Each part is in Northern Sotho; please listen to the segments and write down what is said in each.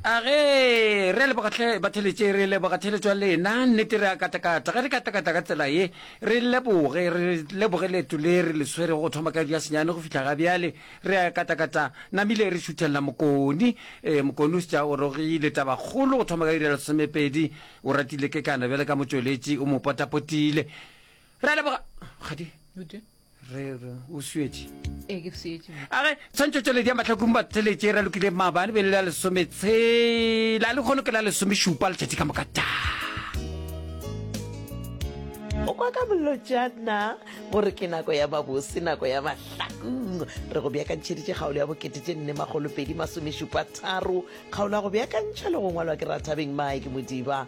a ge re a leboga tlhe batheletše re leboga theletšo ya lena nnete re a katakata ge re katakata ka tsela ye re leboge re leboge leeto le re le swere go thoma ka ya senyane go fitlha ga bjale re a katakata namile re šuthelela mokoni e mokoni o setša o rogile tabakgolo go thoma ka irela somepedi o ratile ke kana bjale ka motšweletši o mo potapotile re a leboga kgadi re re o swetše ee ke swetše age tshwantšhotšweledi ya mahlakong ba theletše ra lokile maabane be le la lesometshela le kgono ke la lesomešupa letšatši ka moka ta o kwa ka bolotšana gore ke nako ya babose nako ya mahlakong re go beakantšheditše kgaolo ya bokete tše nne magolopedi masomešupa tharo kgaolo ya go beakantšha le go ngwalwa ke rathabeng mike modiba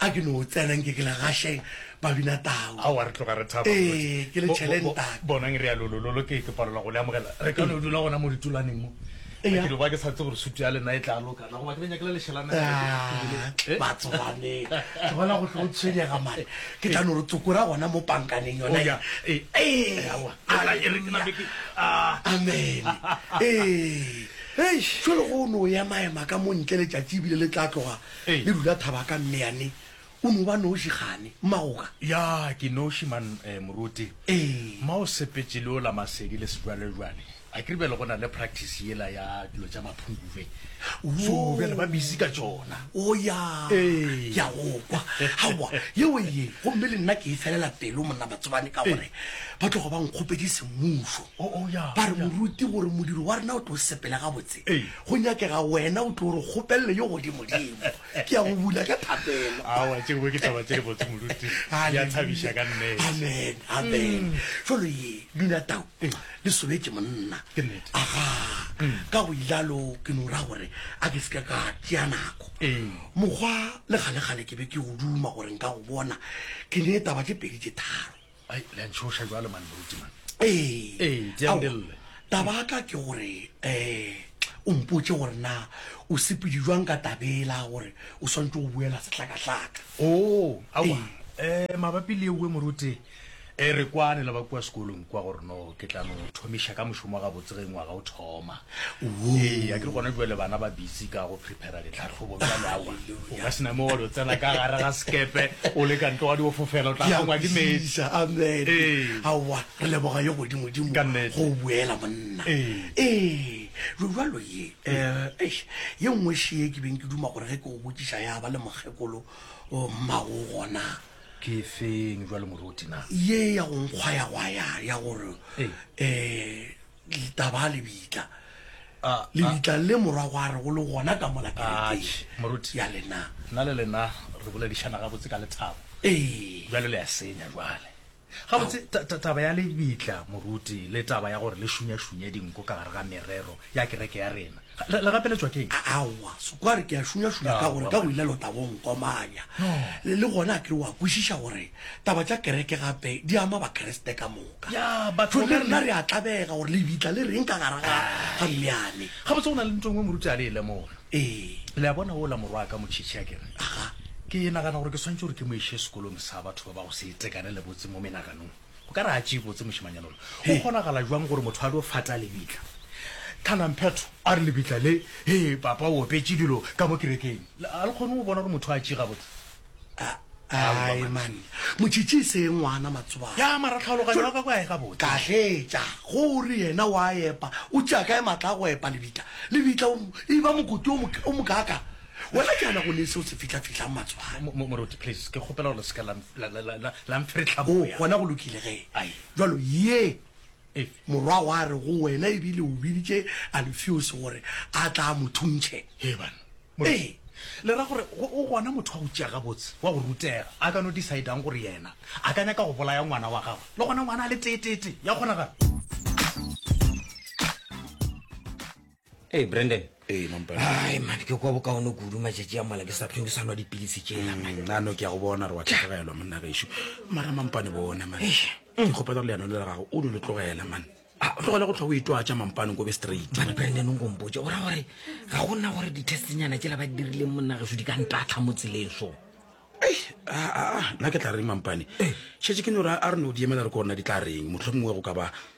a ke no tsena nke ke la gašeng ba bina tau ao a re tloga re thaba ee ke le tšhelentake bonang re ya lolololo ke ke palelwa go le amogela re ka no dula gona mo ditulaneng mo ke lo ba ke sa tse gore sutu ya lena e tla lokana goba ke le nyakela leshelana batsoganeng ke bona go tlo tshwenyega mane ke tla no re tsokora gona mo pankaneng yona ya ee amen ee jalo go no ya maema ka mo ntle letšatši ebile le tla tloga le rula thaba ka mmeane o no ba noši gane mmagoka ya ke noši man eh, moruti ma o sepetše le o la masedi le sejwalejwale a ke ribele go na le practice yela ya dilo tša maphungube so bjale ba busy ka tšona o ya ke a go kwa gawa yeo ye gomme le nna ke e felela pelo monna batsobane ka gore ba tlogo ba nkgopedi semmušo ba re moruti gore modiro wa rena o tlo sepele gabotse go nyakega wena o tlo re kgopelele yo godimodimo ke ya go bula ka thapelo awa tše dingwe ke taba tše di botse moruti di a thabiša ka nnete amen amen mm. jalo ye bina tau mm. le sobetše monna aga mm. ka go ilalo ke no ra gore a ke seka ka tšea nako mokgwa le kgalekgale ke be ke go duma gore nka go bona ke ne taba tše pedi tše tharo Ai, le a ntšhoša jwale man moruti man. Ee, Ee, di a ao, ndelle. taba ya ka ke gore um o mpotše gore na o sepedi jwang ka tabela gore o swantse go buela sehlakahlaka Oo, aowa. Eh, mabapi le ewe moruti, eh, re kwane le ba kua sekolong kwa gore no ke tla no thomiša ka mošomo wa gabotse ge ngwaga o thoma. Ee, a ke gona jwale bana ba busy ka go prepara ditlhahlobo bjale awa. O ka sena mo wa lo tsena ka gare ga sekepe o le ka ntle wa di o fofela o tla kgongwa ke metsi. Amen. Ee. Awa, re leboga yo godimo dimo Ka nnete. go o buela monna. Ee. Ee. Jo jwalo ye. Eh, eish, ye nngwe še ye ke beng ke duma gore ge ke o botšiša ya ba le mokgekolo o mmago gona. Ke e feng jwale moruti na? Ye ya go nkgwayagwaya ya gore Ee. eh Litaba lebitla. Ah, ah. Lebitla le morwa gwa re go le gona ka mola kerekeng Atšhe, moruti. ya lena. Nna le lena re boledišana gabotse ka lethabo. Ee. Bjale le a senya bjale. Gabotse, ta- ta- taba ya lebitla, moruti, le taba ya gore le šunyašunye dinku ka gare ga merero ya kereke ya rena, le le gapeletšwa ke eng? A- Aowa, sekware ke a šunyašunya ka Aowa, gore ka go ile lotabo o nkomanya. No. Le le gona a kere wa kwešiša gore taba tša kereke gape di ama Bakriste ka moka. ya batho le rena re a tlabega gore lebitla le reng ka gara ga ga mmeane ga botse go na le ntho engwe moruti a le e lemoga ee le a bona o la morwa ka motšhitšhi a kere aga ke nagana gore ke swantse gore ke mo ishe sekolong sa batho ba ba go se itekane le botse mo menaganong o ka re a tšee botse mošimanyana lo o kgonagala jwang gore motho a lo fata lebitla thanamphetho a re lebitla le he papa o opetše dilo ka mo kerekeng a le kgone go bona gore motho a tšee ga botse ai man motšhitšhi e se ngwana matsobana ya mara tlhaologanyo wa ka kwa e gabotse kahletša go o re yena wa epa o tšea kae matla a go epa lebitla lebitla e ba mokoti o mokaka wena ke ana go ne se o se fitlhafihlang matsobana moruti please ke kgopela gore le seka la mferetlhaboya gona go lokile ge jalo ye Morwa wa re go wena e bile o biditše Alufeose gore a tla a mo thuntšhe. Hee banna. Ee, le ra gore go o gona motho wa go tšea gabotse, wa go rutega, a ka no decide-ang gore yena a ka nyaka go bolaya ngwana wa gagwe, le gona ngwana a le teeteetee? Ya kgonagala? Hey, Brandon. Hey, mampane. Ai, man, ke kwa bokaone kudu matšatši a mala ke sa tlhong ke sa nwa dipilisi tšela. Mm, a no ke ya go bona re wa tlhagelwa monna gešo. Mara mampane bona man. Ke kgopela gore leano le la gago o lo le tlogela man. Ah, o tlogela go tlhwa o itwatša mampane ko be straight. Bana Brandon o nkompotse o ra gore ga go nna gore di-testnyana tšela ba di dirileng monna gešo di ka ntatlha mo tseleng so. Ei, ah, ah, ah, nna ke tla reng mampane. Šetše ke no ra a re no di emela re ko rena di tla reng mohlomongwe go ka ba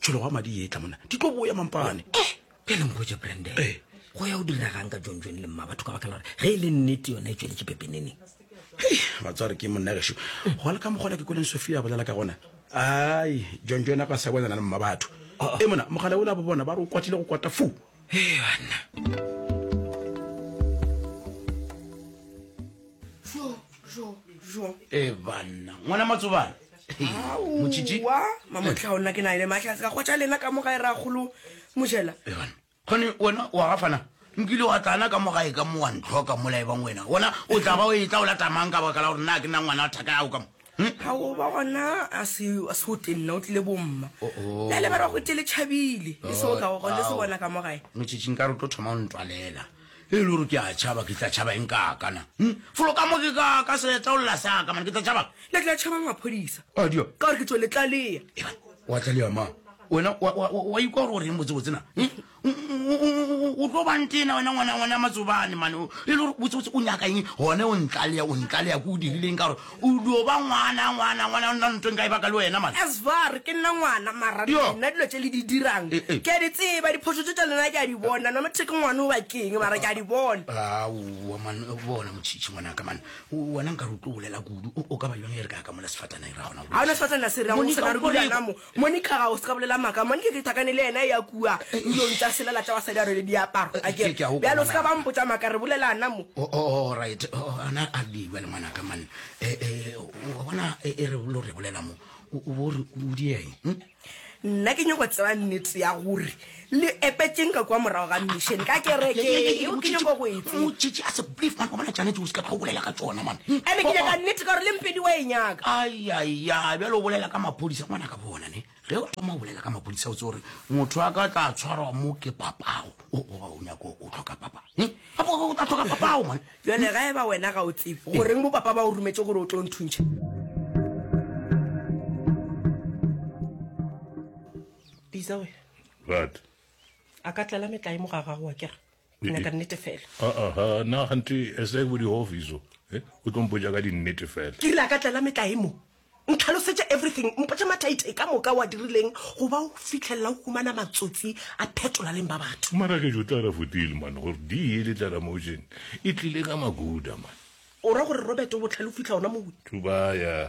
tšhologo ya madi ye tla monna di tlo boya mampane eh, pele nkgotse branden eh. go ya o diragang ka jon jon le mma batho ka baka la gore ge e le nnete yona e tsweletše pepeneneng batsware ke monnageso go le ka mokgona ke koleng sophia a bolela ka gona ai jon jon a ka sa bonana le mma batho oh, oh. e mona mogala o la bo bona ba re o kwatile go kwata foo banna e banna ngwana matsobana Motšitši. aowa mamotlha o nna ke na ene mahlatse ka kgotša lena ka mo gae ra kgolo mojela Evan, kgone wena wa gafana nkile wa tlana ka mo gae ka mo wa ntlhoka mola ebang wena wona o tla ba o etla o lata mang ka baka la gore nna ke nna ngwana wa thaka yago ka mo Hmm? ao ba gona a se a se o tenna o tlile bomma Oh, oh. la lebara go tele tšhabile e seo ka go gone se bona ka mo gae Motšitši nka re o tlo thoma o ntwalela Ge e le gore ke a tšhaba, ke tla tšhaba eng ka ka na? Hm? Folo ka mo ke ka ka seeta o lela sa ka, mane ke tla tšhaba. Le tla tšhaba maphodisa. A dio. Ka gore ke tso le tlalea. Eba, wa tlalea mang? Wena, wa, wa, wa, wa ikwa gore o reng botse-botse na? Hm? O, o, o, o, o tlo bantena wena ngwana, ngwana matsobane mane. E le gore botse-botse o nyaka eng? Gone o ntlalea, o ntlalea ko o dirileng ka gore O dio ba ngwana, ngwana, ngwana, o nna ntweng ka e baka le wena, man. As far ke nna ngwana, mara Yo. nna dilo tše le di dirang, Eh, eh. ke a di tseba, diphošo tše tša lena ke a di bona, no matter ke ngwana o ba keng, mara ke a di bona. Aowa, man, bona motšhitšhi, ngwanaka, man. O- Wena nkare o tlo bolela kudu, o, o ka ba bjang ge re ka ya ka mola sefatana e ra gona go Ga o na lokiša? sefatana se reng Monica, sena re o dula reng? namo, Monica ga o se ka bolela maaka Monica ke thakane le yena ya kua ndilong tša selela tša basadi a rwele diaparo a ke bjale o se ka ba mpotša maaka re bolelana mo O- o- o- Alright, o- o- ana a di bjale ngwanaka man Eh, eh, wa bona e e re lo re bolela mo o o bo re o dieng hm? nna ke nyako tseba nnete ya gore Le epetšeng ka kua morago ga mission ka kereke yeo ke nyako go e tseba. Motšitši a se believe man go bona Janet o se ka tla o bolela ka tšona man. Ene ke nyaka nnete ka gore le mpedi wa e nyaka. Ayaya bjale o bolela ka maphodisa ngwana ka bona ne ge o thoma o bolela ka maphodisa o tse gore motho a ka tla tshwarwa mo ke papago o goba o nyako o tlhoka papa gape o tla tlhoka papago man. Bjale ga e ba wena ga o tsebe goreng bo papa ba o rumetše gore o tlo nthuntšha. Bisa wena. But. A ka tlela metlae mo ga gago wa kere. Nyaka nnete fela. A a ha na gante as like body office. Eh, o tlo mpoja ka di nnete fela. Ke rile a ka tlela metlae mo. Ntlhalosetša everything, mpotša mathaithai ka moka wa dirileng go ba o fitlhelela o humana matsotsi a phetola leng ba batho. Mara ke jo tla ra futile man gore di ye le tla ra motion. E tlile ka maguda man. O ra gore Robert o botlhale o fitlha ona mo. Thubaya.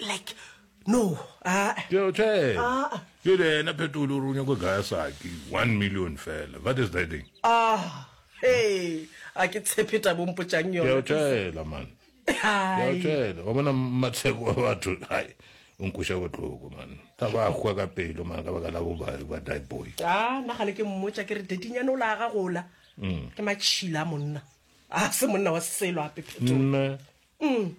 like no jele ena phetolo o re o nyako gaya saki one million fela what is that thing e a ke tshepe ta bompotšang yonaela man tšela wa bona matsheko wa batho hai o nkoša botlhoko man ka ba hwa ka pelo man ka baka la bobari ba die boy a nna gale ke mmotša ke re dedinyane o la ga gola mm. ke matšhila monna a se monna wa selo ape phetolo Mm.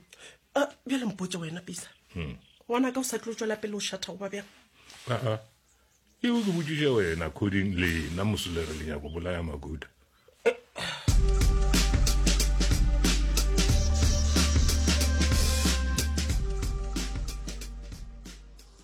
Uh, bjale mpotse wena pisa hmm. ngwana ka o sa tlo tswela pele o šatha goba bjang aa eo ke botsiša wena coding lena mosolere le nyako bolaya makuta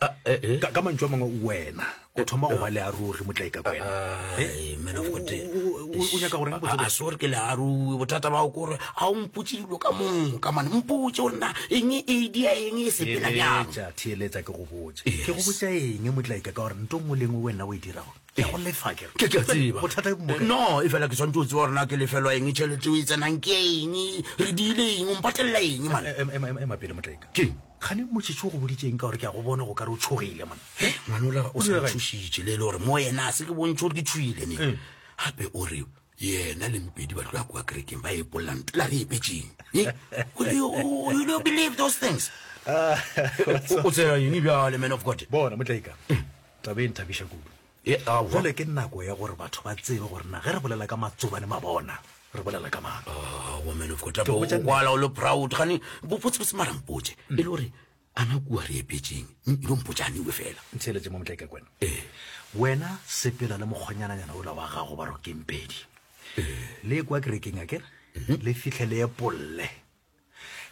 Ah, eh, eh. ka, ka mantšu a mangwe wena o thoma go ba le a ruri motlaika kwena Eh, Ai, man of God. o- o- o- o nyaka go reng botse A- a botse? sore ke learui bothata bao ke gore ga o mpotse dilo ka moka mane mpotse gore na eng e dia eng e sepela bjang theeletša theeletša ke go botse Yes. ke go botsa eng motlaika ka gore nto nngwe le nngwe wena o e dirago ke go lefa ke re. ke ke a tseba bothata e bomoka no e fela ke tshwanetse o tseba gorena ke lefelwa eng tšhelete o e tsenang ke eng re diile eng o mpatelela eng mane Em- em- em- ema pele motlaika Keng? kgane motšhetšo go boditseng ka gore ke a go bona go ka re o tshogile mone ngwanola o sa thušitše le e le gore mo yena a se ke bontšhe gore ke tshogile ne eh. gape o re yena le mpedi ba tloya kua kerekeng ba epolela mpela re epetseng eh? ah, o tsela eng bjale man of god bona motlaika eh. tabe e nthabiša kudu E aowa. Jwale ke nako ya gore batho ba tsebe gore na ge re bolela ka matsobane mabona re bolela ka mang. Aowa man of God, Ke go botša nnete. kwala o le proud gane botsebotse mara mpotse e le gore ana kua re epetseng ilo mpotsa aniwe fela ntheeletse mo motlaika kwena Ee. wena sepela le mokgonyananyana ola wa gago ba rokempedi le kwa kerekeng a kere le fitlhe le epolle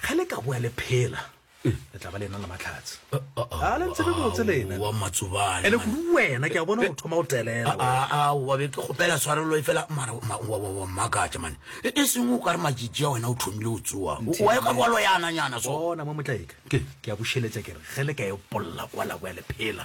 ge le ka boa le phela le tla ba le ena le matlhatsi a le ntsebe botse lena wa matsobane ene kudu wena ke a bona go thoma go telela wa be ke kgopela tshwarelo e fela mara wa makatša mane e, e sengwe o ka re majiji a wena o thomile o tsoa wa e ka boa loyananyana so bona mo motlaeka ke a bušeletša ke re ge le ka e polola kwa la boa le phela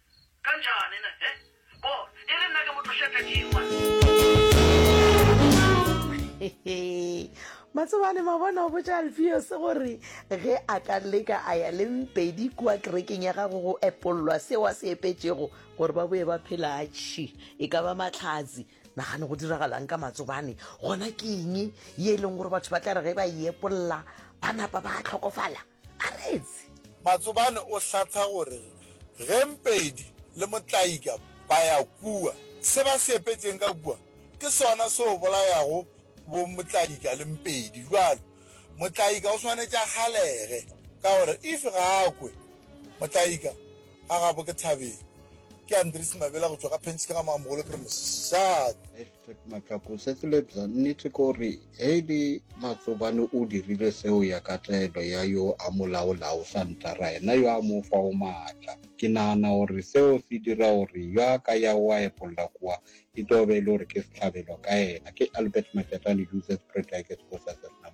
Kanjani ne? He? Bona, e re nna ke motho xe phething wa. Matsobane mabona o botša Alfios gore ge a ka leka a ya le mpedi kua kerekeng ya gago go epollwa seo a se epetšego gore ba boe ba phela atšhi e ka ba matlhatsi nagane go diragalang ka matsobane gona ke eng ye e leng gore batho ba tla re ge ba e epolla ba napa ba tlhokofala Aretse. Matsobane o hlatha gore ge Mpedi le Motlaika ba ya kua, se ba se epetšeng ka kua ke sona se o bolayago bo Motlaika le Mpedi. Bjalo Motlaika o swanetše a kgalege ka gore if ga a kwe, Motlaika a gabo ke Thabeng, ke Andries Mabela go tšwa ka Penchikgama, Mogolo Primary. Shark. Matlako se se lebza nnete ke gore Eli Matsobane o dirile seo ya ka taelo ya yo a mo laolago Santara yena yo a mo fago maatla. Ke nagana gore seo se dira gore yo a ka yago a epolla kua e tlo be e le gore ke sehlabelo ka yena. Ke Albert Majatlane, Joseph Predages, Kgosi a Sernam.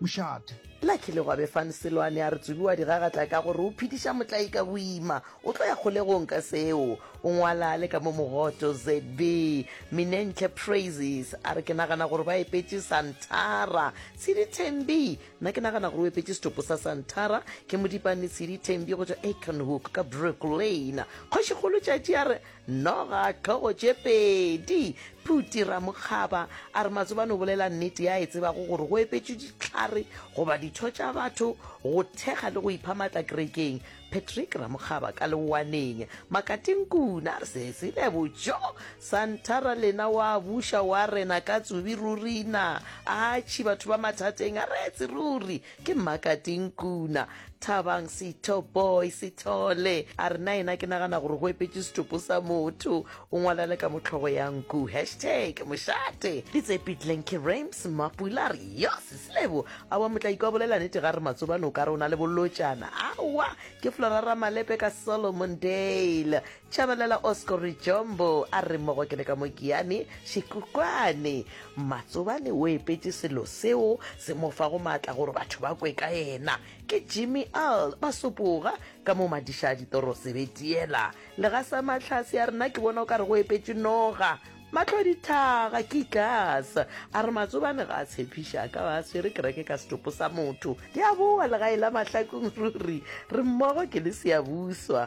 mošate. La kile gwa be fan Seloane a re Tsubi wa di gagatla ka gore o phediša Motlai ka boima, o tlo ya kgolegong ka seo. O ngwala le ka mo mogoto ZB. Minentle Praises a re ke nagana gore ba epetše Santara. Tshidi Thembi, nna ke nagana gore o epetše setopo sa Santara ke Modipane Tshidi Thembi go tšwa Aikenhook ka Brooklyn. Kgošikgolo Tšatši a re Noga hlogo tše pedi. Phuti Ramokgaba a re Matsobane o bolela nnete ya e tsebago gore go epetšwe ditlhare goba ditho tša batho go thekga le go ipha matla kerekeng. Patrick Ramokgaba ka leowaneng. Makati Nkuna a re se se lebotšo. Santhara Lena wa buša wa rena ka tsubi ruri na. Atšhi batho ba mathateng a retse ruri. ke makating kuna thabang setho boy sethole a re na ena ke nagana gore go epetse setopo sa motho o ngwalele ka motlhogo ya nku hashtag mošate di tsepitleng ke rames mapula re yo sesilebo a wa motla ikwa bolela nete ga re matsobane o ka re o na le bolotšana awa ke florara malepe ka solomon dale Tshabalala Oscori Jombo a re mmogo ke le ka mokiane Shikukwane Matsobane o epetše selo seo se mo fago maatla gore batho ba kwe ka yena. Ke Jimmy Earl ba sopoga ka mo madiša ditoro sebetiela. Legasa Matlhase a rena ke bona o ka re go epetše noga. Matlho dithaga ke ikas a re Matsobane ga a tshepiša a ka ba a swere kereke ka setopo sa motho. Ke a boa legae la Mahlakong ruri re mmogo ke le Seabuswa.